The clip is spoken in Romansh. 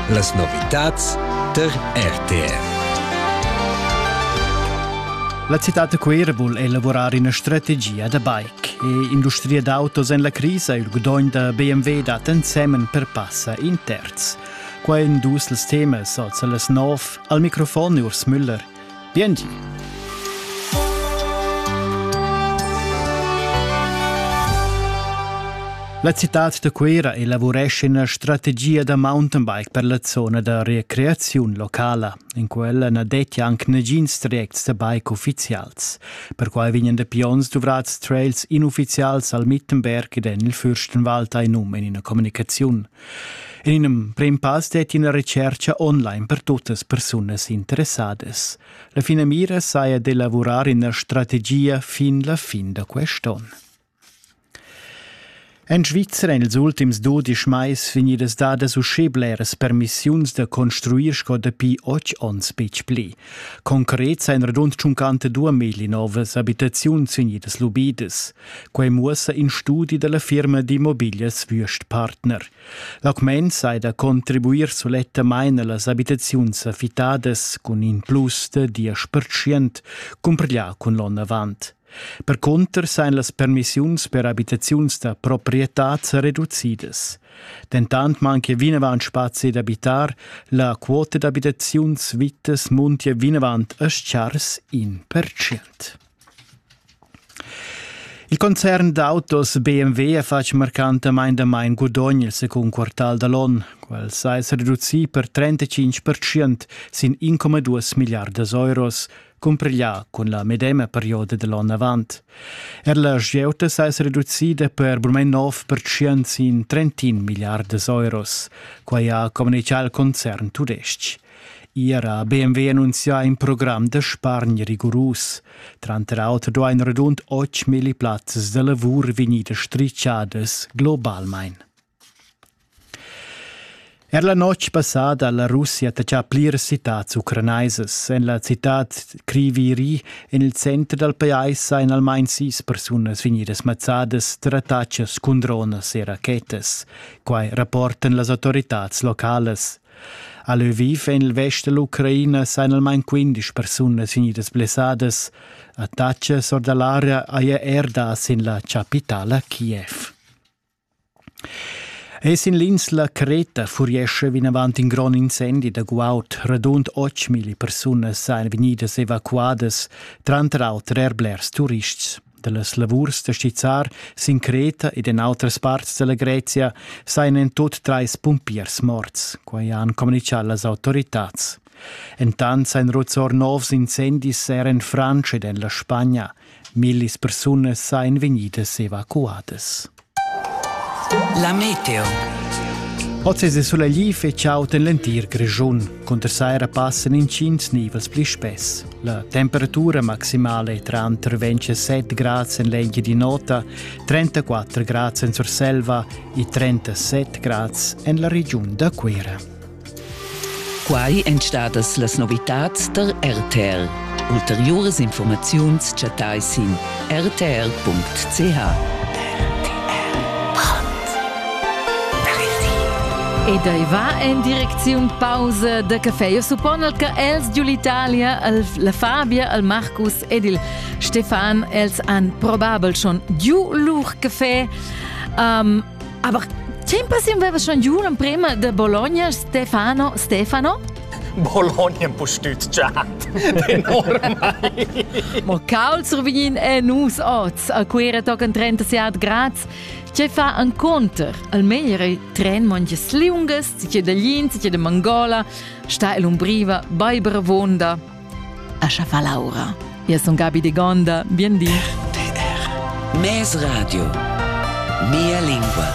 Las novitads tar RTR. La citad da Cuira vul elavurar ina strategia da bike. E industria d'autos en la crisa il gudogn da BMW dat ensemen per passa in terz. Quai è in dus temas oz las nov. Al microfon Urs Müller. Biengi. La citad da Cuira elavuresce ina strategia da mountainbike per la zona da recreaziun locala. In quella na dettia anc nagins trajects da bike uffizials. Perquai vegnan da pions duvrads trails inuffizials al Mittenberg ed en il Fürstenwald ein um in ina communicaziun. En in emprim pass detti ina retscherca online per tuttas persunas interessadas. La finamira saja d'elavurar ina strategia fin la fin da quest'onn. En Svizra en ils ultims dudisch mais vegnidas dadas uschè bleras permissiuns da construir sco dapi otg onns betg pli. Concret sain radund 52 novas abitaziuns vegnidas lubidas. Quei muossa in studi dalla firma d'immobiglias Würstpartner. L'augment sai da contribuir sulettamain allas abitaziuns affittadas cun in plus de diesch percient cumpriglià cun l'onn avant. Per conter sein las permissiuns per abitaziuns da proprietad reducidas. Dentant manchia vinavant spazi d'abitar, la quota d'abitaziuns vittas muntia vinavant a chars in percient. Il concern d'autos BMW ha fatg marcantamain damain gudogn il secund quartal da l'onn. Quel sa esser reducì per 35% sin 1,2 miliardas euros, cumpiglià cun la medema perioda da l'onn avant. Er la gieuta sa esser reducida per brument 9% sin 31 miliardas euros. Quai ha communitgà il concern tudestg. Era ha BMW annunzià in program da spargn rigurus. Tranter auter duain radund 8.000 plazzas da lavur vegnir strischadas globalmain. Er la notg passada ha la Russia attachà pliras citads ucranaisas. En la citad Kriviri, en il center dal pajais, ein almain sis persunas vegnidas mazzadas tar attacas cun dronas e rachetas. Quai rapportan las autoritads localas. A Lviv en il vest da l'Ucraina sajan almain quindesch persunas vegnidas blessadas. A Tacce or da l'area haja er dà sin la chapitala Kiev. Es in l'insla Creta furiescha vinavant in grond incendi da guaud. Radund 8.000 persunas sajan vegnidas evacuadas, tranter auter er blers turists. dallas lavurs da stizzar sin Creta ed en outras parts dalla Grezia sajan en tut treis pumpiers morts, quai han communitgà las autoritads. Entant sein Ruzzor novs incendis er en Frantscha ed en la Spagna. Millis persunas sajan vegnidas evacuadas. La meteo. Oz è sulegli fetg aut en l'entir Grischun. Cunter saira passan intgins nivels pli spess. La temperatura maximala è tranter 27 grads en l'engia di nota, 34 grads en Surselva e 37 grads en la regiun da Cuira. Quai èn stadas las novitads tar RTR. Ulteriuras informaziuns chattai sin rtr.ch. Ed ei va en direcziun pausa da café. Io suppon che els giu l'Italia, la Fabia, al Marcus ed il Stefan, els han probabel schon giu lur café. Um, Aber tempas inveva schon giù l'emprema de Bologna Stefano Stefano? Bologna postütschat enormai. Mo caul sur vegin è nus oz a quera tocan 37 grads. Ce fa an conter, al meglio tren monges liungas, ce da Linz, ce da Mangola, sta el umbriva, baiber vonda. Ascha fa Laura. Io sun Gabi de Gonda, bien di. RTR, Mes Radio, mia lingua.